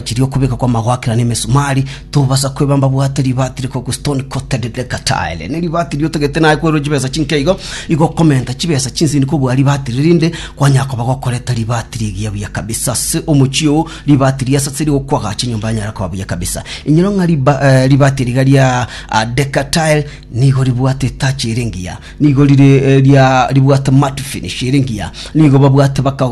Chiria okobeka kw'amagwakera na emesumari, tobasa kwebamba bwate ribaati rikogwa stone coated reka tile. Ne ribaati riria otagete naye kwerwa chibesa chinke igo, igo okomenta chibesa chinsini kobua ribaati riria rinde, kwanya koba gokoreta ribaati rigiya buya kabisa. Ase omochie oo, ribaati ria sasa rigokwa agacha enyomba yanyara koba buya kabisa. Inyora ng'a riba, eh, ribaati eri iga ria ah, Deca tile nigo ribwate etachi ere engiya. Nigo rire eria ribwate matu finish ere engiya, nigo babwate baka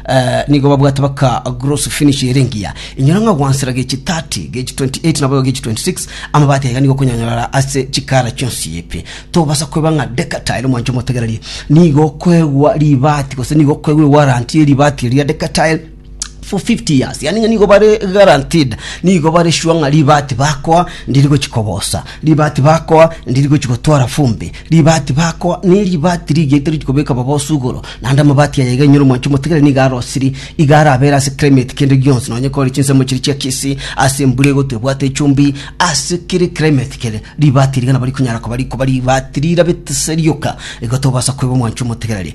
eh, nigo babwate baka gross finish ere engiya. Inyora ng'a gwansera gechi 30, gechi 28 naboigo gechi 26, amabati aiga nigo okonyonyorara ase chikara chionsi ebi. Tobasa kweba ng'a Decatile omwancho omotegereri nigo okoegwa ribati gose nigo okoegwa ewaranti ye ribati eria Decatile for 50 years yani ng'a nigo bare guaranteed nigo bare sure ng'a ribati bakoa ndiri gochikobosa ribati bakoa ndiri gochigotwara fumbi ribati bakoa ne ribati rigete richikobeka baba osugoro naende amabati aya iga inyore omwancho omotigere niga arosiri iga arabera ase climate kende gionsi nonye kore chinsemo chiri chia kisii ase embura egotwa ebwate echumbi ase kere climate kere ribati riga nabo rikonyara koba rikoba ribati rirabete se rioka igo tobasa koeba omwancho omotigereri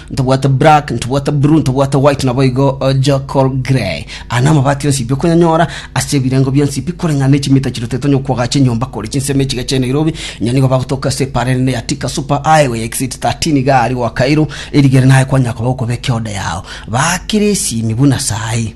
Ntobwate black, ntobwate blue, ntobwate white naboigo charcoal grey. Aya namabati onsi bi okonyanyora ase ebirengo bionsi bi koreng'ana ne chimita chirotetwe onye okwogacha enyomba kore chinsemo echiga chiaye Nairobi, inya nigo bagotoka ase epaara enene ya Thika Super Highway ya Exit 13 iga aria gwa Kairu, erigere naye kwanyakoba gokoba ekeoda yao. Baakire esimi buna saii.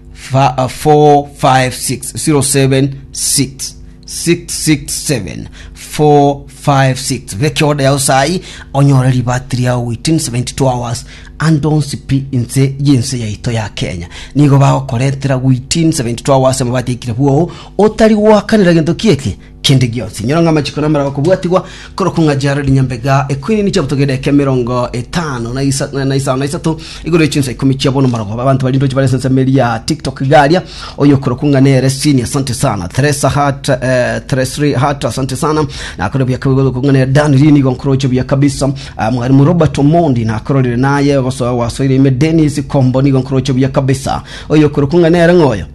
456 beka order yao sai onyore ribati riao within 72 hours and don't spi inse y'ense yaito ya kenya nigo bagokorentera within 72 hours amabati aikire bwoo otari goakanera gento kieke kende gionsi. Inyora ng'a amachiko na amerago kobwatigwa korokwa ng'a chiaro rinyambega ekwinini chiabutoka edeka emerongo etano na isa- na- na isano na isato igoro ya chinsa ikomi chia bono marogoba abanto bari ndochi bare sense meri ya tiktok garia oyo korokwa ng'a nere sini asante sana Theresa Hart eh, Thresri Hart asante sana nakore buya kabigodo korokwa ng'a nere Dan Lini igo nkoroche buya kabisa Ah, mwarimu Robert Omondi nakororire naye basoa wasoire ime Dennis Kombo nigo nkoroche buya kabisa oyo korokwa ng'a nere ng'oyo